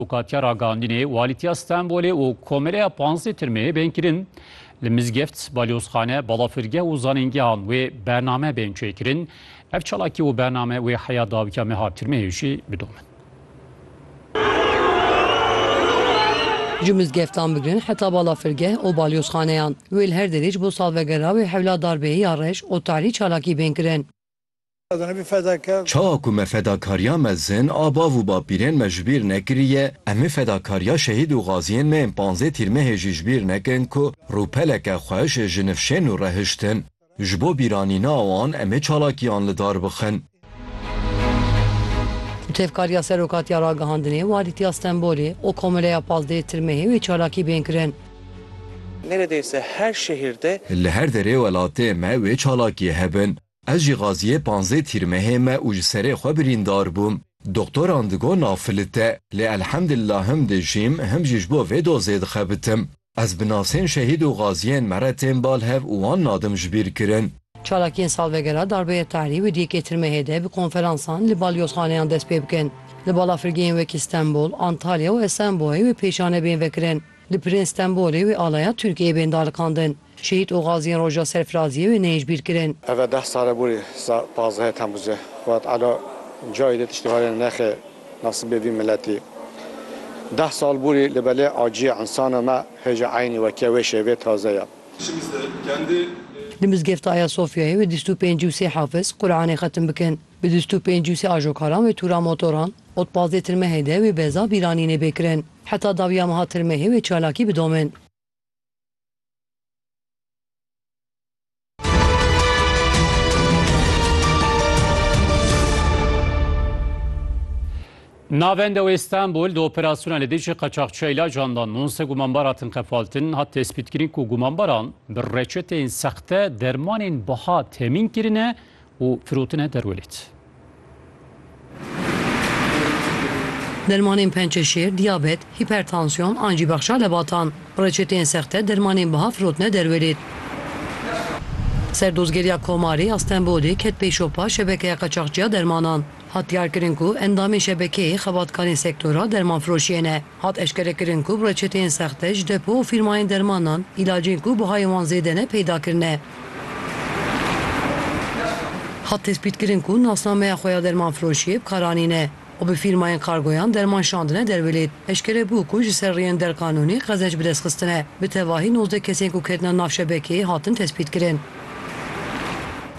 û katiya ragandinê Walîtiya Stenbolê û Komeleya Panzdeh Tirmeyê bên kirin, li mizgeft, balyozxane, balafirgeh û zanîngehan wê bername bên çêkirin, ev çalakî û bername wê heya dawikiya meha Tirmeyê jî bidomin. Ji mizgeftan bigirin heta balafirgeh û balyozxaneyan wê li her derê ji bo salvegera wê hewla darbeyê ya reş û tahrî çalakî bên kirin. Çawa ku me fedakariya mezin a bav û bapîrên me ji bîr nekiriye, em ê fedakariya şehîd û gaziyên me yên panzdeh Tîrmehê jî ji bîr nekin ku rûpeleke xweş ji nifşên nû re hiştin. Ji bo bîranîna wan em ê çalakiyan li dar bixin. Bi tevkariya Serokatiya Ragihandinê, Walîtiya Stenbolê û Komileya Pazdeh Tîrmehê wê çalakî bên kirin. Neredeyse her şehirde. Li her derê welatê me wê çalakiyê hebin. Ez jî gaziyê panzdeh tîr mehê me û ji serê xwe birîndar bûm. Doktoran digot nav filit e, lê elhemdillah him dijîm him jî ji bo vê dozê dixebitim. Ez bi nasên şehîd û gaziyên me re tên bal hev û wan nadim ji bîr kirin. Çalakiyên salvegera Darbeyê Tahrî û di yekê tirmehê de bi konferansan li balyozxaneyan dest pê bikin. Li balafirgehên wekî Stenbol, Antalya û Esenboyê wê pêşanebên vekirin. Li Pirên Stenbolê wê alaya Tirkiyeyê bên daliqandin. Şehîd û gaziyên roja serfiraziyê wê neyecbîr kirin. Eve deh sal e borî pazdehê Temmuzê Xwat Elo cayê dê tiştê herêne nexê nasibê vî miletî. Deh sal borî li belê aciyê insano me hêja eynî weke wê şêvê taze ye. Li mizgefta Ayasofyayê wê dîst û pêncî û sê hafiz Quranê xetim bikin. Bi du sed û pênc û sê ajokaran wê tûra motoran, ot pazdeh tirmehê de wê beza bîranî nêbê kirin. Heta dawiya meha tirmehê wê çalakî bidomin. Navenda wê Stenbol di operasyona li dijî qeçaxçiya îlacan de nonse gumanbar hatin qefaltin, hat tespîtkirin ku gumanbaran bi reçeteyên sexte dermanên biha temîn kirine û firotine der welêt. Dermanên pençe şêr, diyabet, hîpertansiyon an jî bexşa lebatan, bi reçeteyên sexte dermanên biha firotine der welêt. Serdozgeriya Komarê ya Stenbolê ket pey şopa şebekeya qaçaxçiya dermanan. Hat diyarkirin ku endamên şebekeyê xebatkarên sektora dermanfiroşiyê ne. Hat eşkerekirin ku bi reçeteyên sexte ji depo û fîrmayên dermanan îlacên ku bihayên wan zêde ne peyda kirine. Hat tespîtkirin ku nasnameya xwe ya dermanfiroşiyê bi karanî ne û bi fîrmayên kargoyan derman şandine derwilêt. Eşkere bû ku ji ser riyên derkanûnî qezenç bi dest xistine. Bi tevahî nozdeh kesên ku ketine nav şebekeyê hatin tespîtkirin.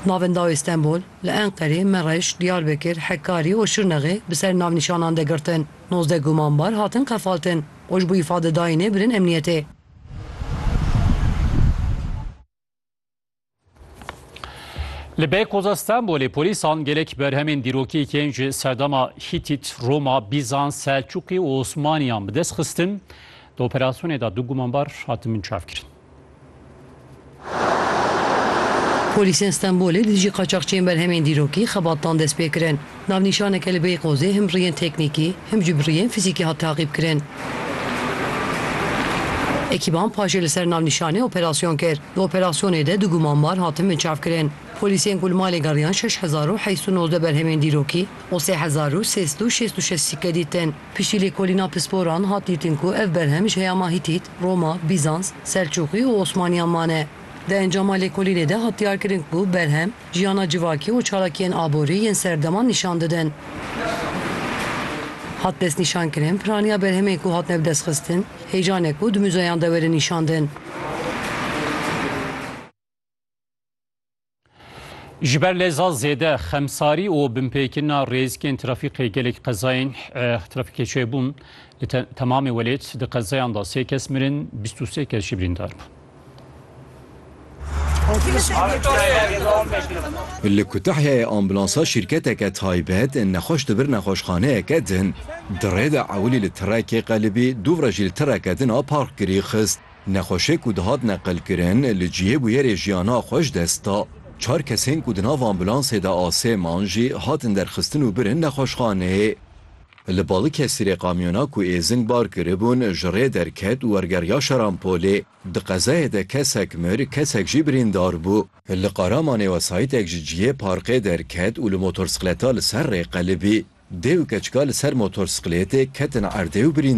Navên dawê Stenbol, li Enqerê, Mereş, Diyarbekir, Hekarî û Şirnexê bi ser navnîşanan de girtin. Nozdeh gumanbar hatin qefaltin û ji bo îfadedayînê birin emniyetê. Li Beykoza Stenbolê polîsan gelek berhemên dîrokî yên ji serdana Hîtît, Roma, Bîzans, Selçûqî û Osmaniyan bi dest xistin. Di operasyonê de du gumanbar hatin binçavkirin. Polîsên Stenbolê di dijî qaçaxçiyên berhemên dîrokî xebatdan dest pê kirin. Navnîşaneke li Beyqozê him bi riyên teknîkî, him jî bi riyên fizîkî hat taqîbkirin. Ekîban paşê li ser navnîşanê operasyon kir. Di operasyonê de du gumanbar hatin binçavkirin. Polîsên ku li malê geriyan şeş hezar û heşt û nozdeh berhemên dîrokî û sê hezar û sê sed û şêst û şeş sîkke dîtin. Piştî lêkolîna pisporan hat dîtin ku ev berhem ji heyama Hîtît, Roma, Bîzans, Selçûqî û Osmaniyan mane. Di encama lêkolînê de hat diyarkirin ku berhem, jiyana civakî û çalakiyên aborî yên serdeman nîşan didin. Hat destnîşankirin piraniya berhemên ku hatine bidestxistin, hêjanek û di muzeyan de werin nîşandin. Ji ber leza zêde xemsarî û binpêkirina rêzikên trafîkê gelek qezayên trafîkê çêbûn. Li temamê welêt di qezayan de sê kes mirin, bîst û sê kes jî birîndar bûn. Li Kutahyayê ambulansa şîrketeke taybet nexweş di vir nexweşxaneyeke din. Di rê de ewilî li tirekê qelibî, dûvre jî li tireke din a park kirî xist. Nexweşê ku dihat neqilkirin li cihê bûyerê jiyana xwe ji dest da. Çar kesên ku di nav ambûlansê de asê man jî hatin derxistin û birin nexweşxaneyê. Li Balıkesirê kamyona ku êzing bar kiribûn ji rê derket û wergeriya Şarampolê. Di qezayê de kesek mir, kesek jî birîndar bû. Li Qaramanê wesayîtek ji cihê parkê derket û li motorsikleta li ser rê qelibî. Dê û keçika li ser motorsiklêtê ketin erdê û birîndar bûn.